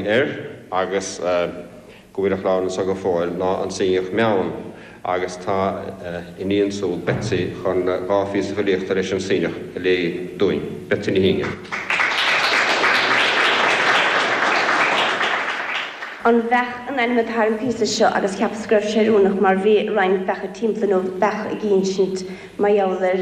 air, agus go bhfuil a chlann anseo go fóill, ná an Suibhneach Meann, agus tá a iníon siúd, Betsy, chun dhá phíosa filíochta leis an Suibhneach a léamh dúinn. Betsy Ní Shuibhne. An Bheach an ainm atá ar an bpíosa seo, agus cheapas go raibh sé oiriúnach mar bhí roinnt beacha timpeall, nó beacha ag ínsint mar gheall ar.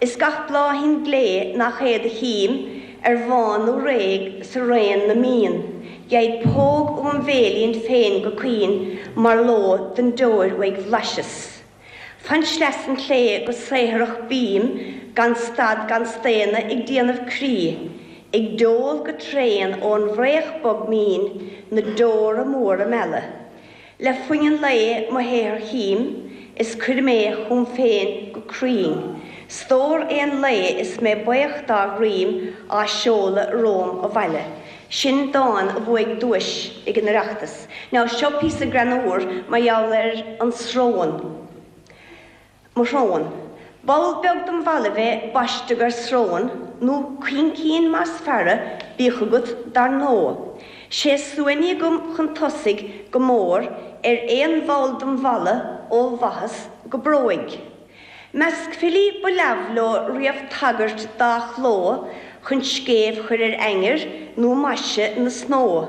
Is gach bláithín glé nach é do chím, ar bhán nó réidh sa raon na mbíonn, gheibh póg óm bhéilín féin go caoin mar ló don deoir uaidh bhlaiseas. Fan sleasa an tsléibhe go saothrach bím gan stad gan staonadh ag déanamh crí, ag deol go tréan ón bhfraoch bog mín na deora móra meala, Le foighne lae mo shaothair chím is cuirim é chugam féin go cruinn, stór aon lae is mé baoch dá dhroim á seoladh romham abhaile. Sin dán a bhuaigh duais ag an Oireachtas. Now seo píosa greannúr mar gheall ar an sróin. Mo Shrón. Ball beag dem bhallaibh a baisteadh air srón, nó caincín más fearra, bíodh agat dar ndóigh. Sé suaithní agam chun tosaigh go mór ar aon bhall dem bhallaibh ó bhaitheas go bróig. Measc filí ba leamh leo riamh tagairt dá chló chun scéimh chur ar ainnir nó maise na snódh.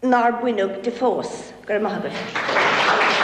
nár baineadh de fós. Go raibh maith agat.